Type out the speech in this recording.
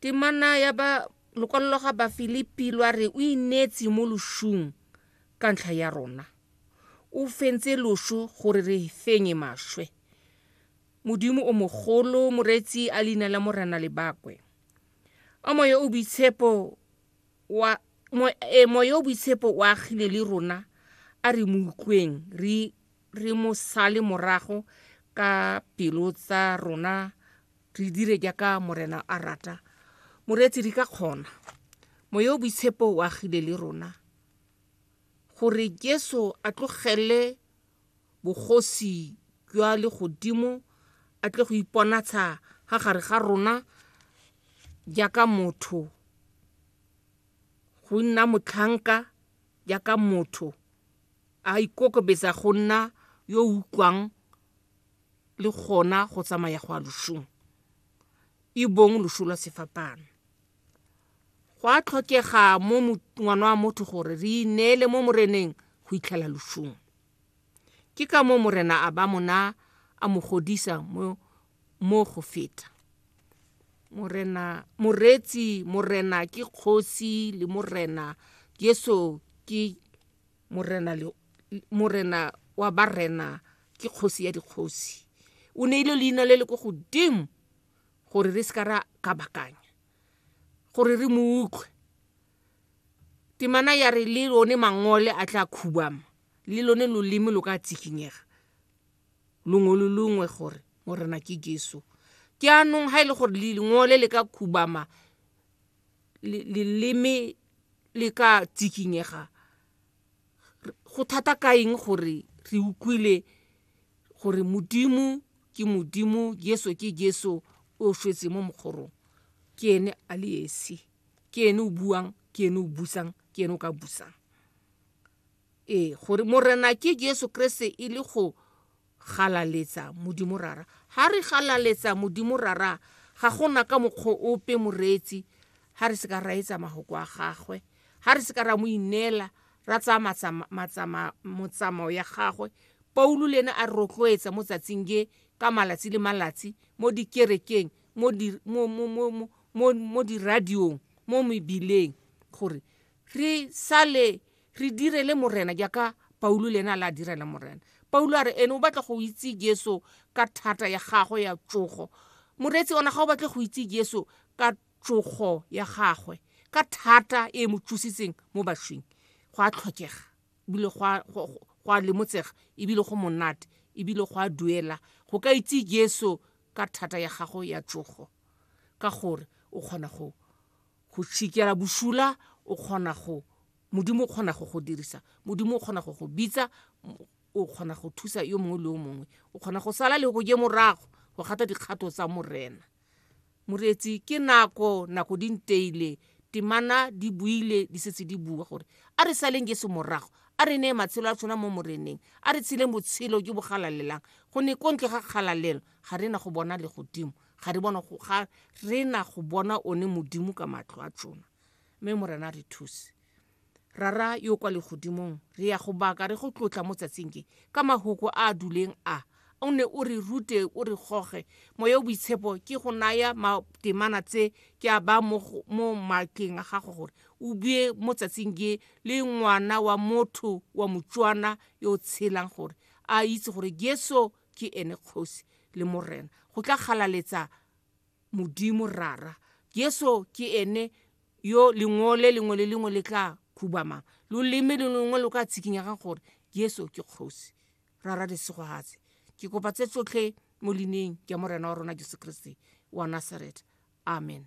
Temana ya ba lokwalo ga Bafilipi lwa re o ineetse mo loshung ka ntlha ya rona. O fentse losho gore re fenye mashwe. Modimo o mogolo moreetsi a leina la Morena le bakwe. A moya o boitshepo wa mo e moya o boitshepo o agile le rona a re mo utlweng re re mo sale morago ka pelo tsa rona Re dire jaaka Morena a rata. Moreetsi, re ka kgona. Moya o boitshepo o agile le rona gore Jesu a tlogele bogosi jwa legodimo a tle go iponatsha ga gare ga rona jaaka motho, go nna motlhanka jaaka motho, a ikokobetsa go nna yo utlwang le gona go tsamaya go a lošong e bong lošo lwa sefapano go a tlhokega mo ngwana wa motho gore re ineele mo moreneng go itlhela lošong ke ka mo morena a ba mona a mo godisa mo mo go feta morena moretsi morena ke kgosi le morena yeso ke morena le morena wa barena ke kgosi ya dikgosi o neile leina le le ko godimo gore re se ka ra kabakanya gore re mo utlwe temana ya re le lone mangole a tla khubama le lone loleme lo ka tsikinyega longwe le longwe gore morena ke jesu ke anong ga e le gore lengole le ka khubama leleme le ka tsikinyega go thata ka eng gore re utlwile gore modimo ke modimo jeso ke jeso o shwetse mo mokgorong ke ene a le esi ke ene o buang ke ene o busang ke ene o ka busang ee gore morena ke jeso kreste e le go Galaletsa Modimo Rara. Ha re galaletsa Modimo Rara, ga gona ka mokgwa ope moreetsi ha re se ka ra etsa mahoko a gagwe, ha re se ka ra mo ineela, ra tsaya matsama, matsama, motsamao ya gagwe. Paulo le ene a re rotloetsa mo tsatsing ge ka malatsi le malatsi mo dikerekeng, mo di, mo, mo, mo, mo, mo, mo diradiong, mo mebileng gore re sale re direle morena jaaka paulo le ene a le a direla morena paulo a re ene o batla go itse jesu ka thata ya gagwe ya tsogo moreetsi ona ga o batle go itse jesu ka tsogo ya gagwe ka thata e mo tsositseng mo bashwing go a tlhokega ebile go a lemotsega ebile go monate ebile go a duela go ka itse jesu ka thata ya gago ya tsogo ka gore o kgona go Go tšhikela bošula o kgona go, Modimo o kgona go go dirisa, Modimo o kgona go go bitsa, o kgona go thusa yo mongwe le yo mongwe. O kgona go sala le go je morago go gata dikgato tsa Morena. Moreetsi, ke nako, nako di nteile, temana di buile, di setse di bua gore a re saleng Jesu morago, a re neye matshelo a tshwana mo Moreneng, a re tsheleng botshelo jo bo galalelang, gonne ko ntle ga kgalalelo ga re na go bona legodimo. ga re bona go ga re na go bona one modimo ka matlho a tsona mme morena re thuse rara yo kwa legodimong re ya go baka re go tlotla mo tsatsing ke ka mahoko a a duleng a o ne o re rute o re goge moya o boitshepo ke go naya matemana tse ke a ba mo matleng a gago gore o bue mo tsatsing ke le ngwana wa motho wa motswana yo o tshelang gore a itse gore jesu ke ene kgosi le morena go tla galaletsa modimo rara jesu ke ene yo lengwe le lengwe le lengwe le tla khubamang loleme le lengwe lo ka tshikinyagang gore jesu ke kgosi rara lesegogatse ke kopa tse tsotlhe mo lineng ja morena wa rona jesu kriste wa nasaretha amen